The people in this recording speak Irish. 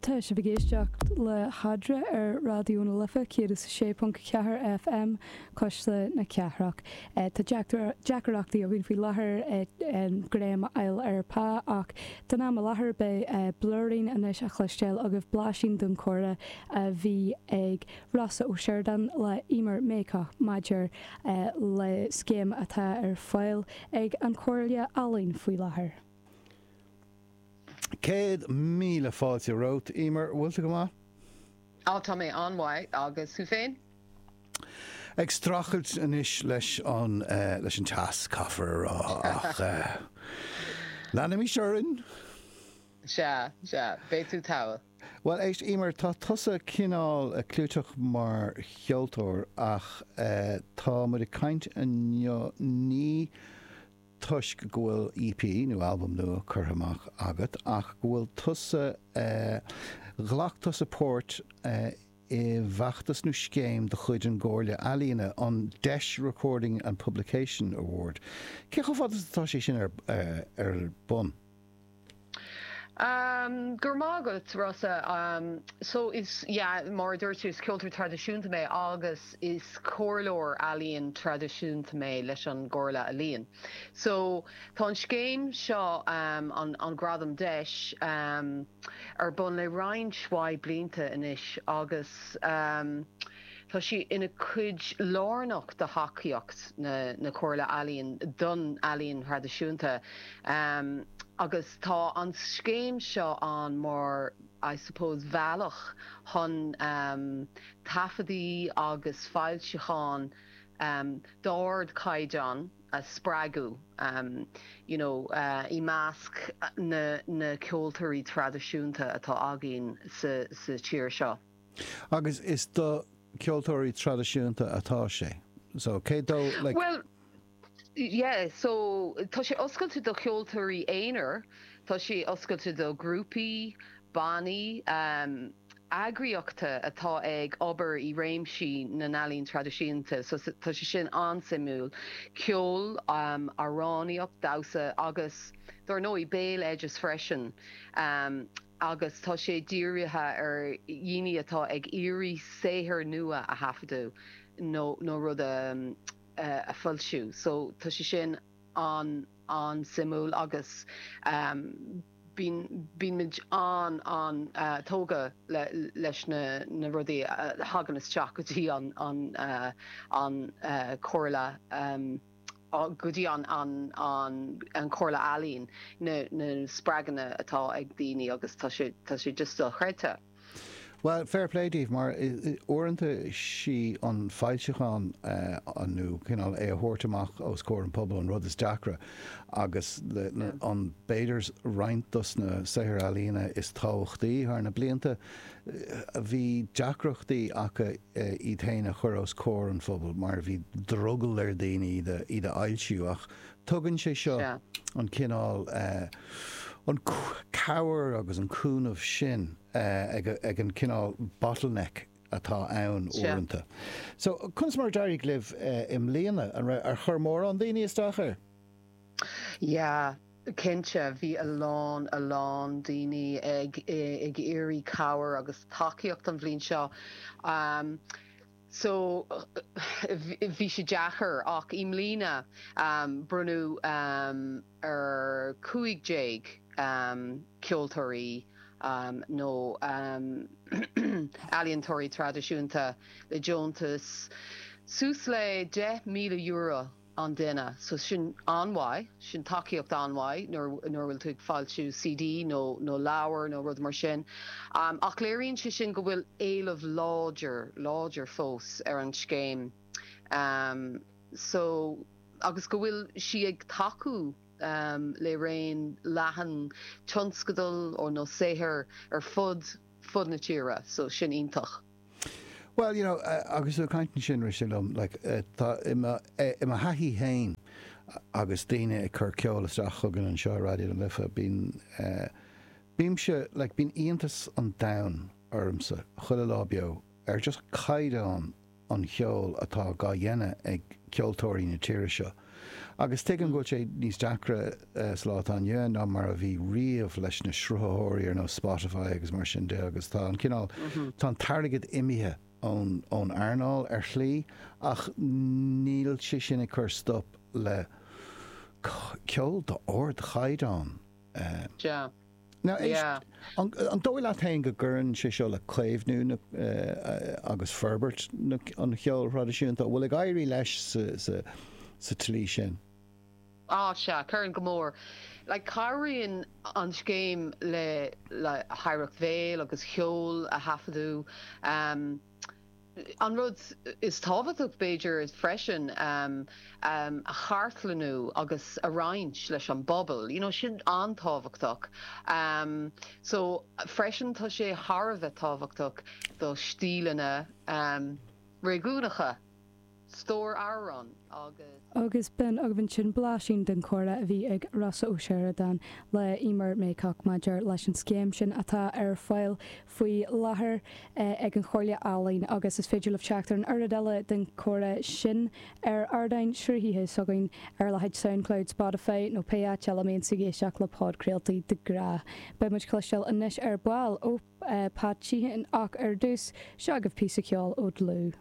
Tá sibh ag éisteacht le hAdre ar Raidió na Life 106.4 FM, Cuisle na Cathrach. Tá deacrachtaí againn faoi láthair greim a fháil ar Pa ach don am i láthair beidh blúirín anois á chloisteáil agaibh blaisín don comhrá a bhí ag Rossa Ó Sioradáin le Emer Maycock maidir le scéim atá ar fáil ag an Chomhairle Ealaíon faoi láthair. Céad míle fáilte romhat, Emer. Bhfuil tú go maith? Á, tá mé an-mhaith. Agus thú féin? Ag streachailt anois leis an, eh, leis an teas, caithfear a rá, ach eh, leanaimis orainn. Sea, sea. Beidh tú togha. Bhuel, éist, Emer, tá tusa cineál eh, clúiteach mar cheoltóir ach eh, tá muid ag caint inniu, ní, toisc go bhfuil EP nó albam nua curtha amach agat ach go bhfuil tusa ghlac tusa páirt i bhfeachtas nó scéim de chuid an gComhairle Ealaíona, an deis Recording and Publication Award. Cé chomh fada atá sé sin ar bun? Go raibh maith agat, Rossa. So is, yeah, mar a dúirt tú, is ceoltóir traidisiúnta mé agus is comhairleoir ealaíon traidisiúnta mé leis an gComhairle Ealaíon. So tá an scéim seo, an Gradam Deis, ar bun le roinnt mhaith blianta anois agus, Tá sí ina cuid lárnach de thacaíocht na Comhairle Ealaíon don ealaín thraidisiúnta agus tá an scéim seo ann mar I suppose bealach chun taifeadaí agus foilseacháin d'ardchaighdeán a spreagadh you know i measc na ceoltóirí traidisiúnta atá againn sa tír seo. Agus is do ceoltóirí traidisiúnta atá sé. So cé dó like... Well, yeah, so tá sé oscailte do cheoltóirí aonair, tá sé oscailte do ghrúpaí, bannaí, um, eagraíochta atá ag obair i réimsí na n-ealaíon traidisiúnta, so tá sé sin an-suimiúil. Ceol, um, amhránaíocht, damhsa agus, dár ndóigh, béaloideas freisin. Um. agus tá sé dírithe ar dhaoine atá ag iarraidh saothar nua a thaifeadadh nó nó rud a a foilsiú so tá sé sin an an-suimiúil agus bíonn bíonn muid an an-tógtha le leis na na rudaí a thagann isteach go dtí an an an Chomhairle. go dtí an Chomhairle Ealaíon, na spreagthaí atá ag daoine agus tá sé just dochreidte. Bhuel, fair play daoibh mar uaireanta 'sí an foilseachán nó cineál é a thabhairt amach os comhair an pobal an rud is deacra agus b'fhéidir roinnt dos na saothair ealaíona is tábhachtaí thar na blianta a bhí deacrachtaí acu iad féin a chur os comhair an phobail mar a bhí drogall ar dhaoine iad a fhoilsiú ach tugann sé seo an cineál cabhair agus an cúnamh sin ag an cineál bottleneck atá ann uaireanta. So, conas mar a d'éirigh libh i mbliana? Ar chuir mórán daoine isteach air? Yeah. Cinnte, bhí a lán, a lán daoine ag iarraidh cabhair agus tacaíocht an bhliain seo so bhí sé deacair ach i mbliana bronnadh ar cúig déag ceoltóirí nó ealaíontóirí traidisiúnta le deontas suas le deich míle euro. an duine. So sin an-mhaith, sin tacaíocht an-mhaith nuair a bhfuil tú ag foilsiú CD nó leabhar nó rud mar sin. Ach léiríonn sé sin go bhfuil éileamh láidir, láidir fós ar an scéim. So agus go bhfuil sí ag tacú le raon leathan tionscadal nó saothair ar fud, fud na tíre. So sin iontach. Bhuel, you know, agus tú ag caint ansin, rith sé liom, like, tá i mo thaithí féin agus daoine ag cur ceol isteach chugainn anseo ar Raidió na Life, bíonn, bímse, like, bíonn iontas an domhain ormsa chuile lá beo ar just caighdeán an cheoil atá á dhéanamh ag ceoltóirí na tíre seo. Agus tuigim go bhfuil sé níos deacra sa lá atá inniu ann ná mar a bhí riamh leis na sruthaitheoirí ar nós Spotify agus mar sin de agus tá an cineál, tá an t-airgead imithe ón, ón earnáil ar shlí ach níl sé sin ag cur stop le ceol d'ard-chaighdeán. An dóigh leat féin go gcuireann sé seo le caomhnú agus forbairt an cheoil thraidisiúnta? An bhfuil ag éirí leis sa tslí sin? Á, sea, cuireann go mór. Cabhraíonn an scéim le hoidhreacht bhéil agus cheoil a thaifeadadh. An rud is tábhachtach, b'fhéidir, freisin é a chartlannú agus a roinnt leis an bpobal, you know, sin an-tábhachtach. So, freisin, tá sé thar a bheith tábhachtach do stíleanna réigiúnacha. agus b'in agaibh ansin blaisín den chomhrá a bhí ag Rossa Ó Seireadáin le Emer Maycock maidir leis an scéim sin atá ar fáil faoi láthair ag an Chomhairle Ealaíon agus is féidir libh teacht ar an oiread eile den chomhrá sin ar ardáin sruthaithe s'againn ar a leithéid Soundcloud, Spotify nó pé áit eile a mbíonn sibh ag éisteacht le podchraoltaí de ghnáth. Beidh muid ag cluinstin anois ar ball ó Pat Sheehan ach ar dtús, seo agaibh píosa ceoil ó Dhlúth.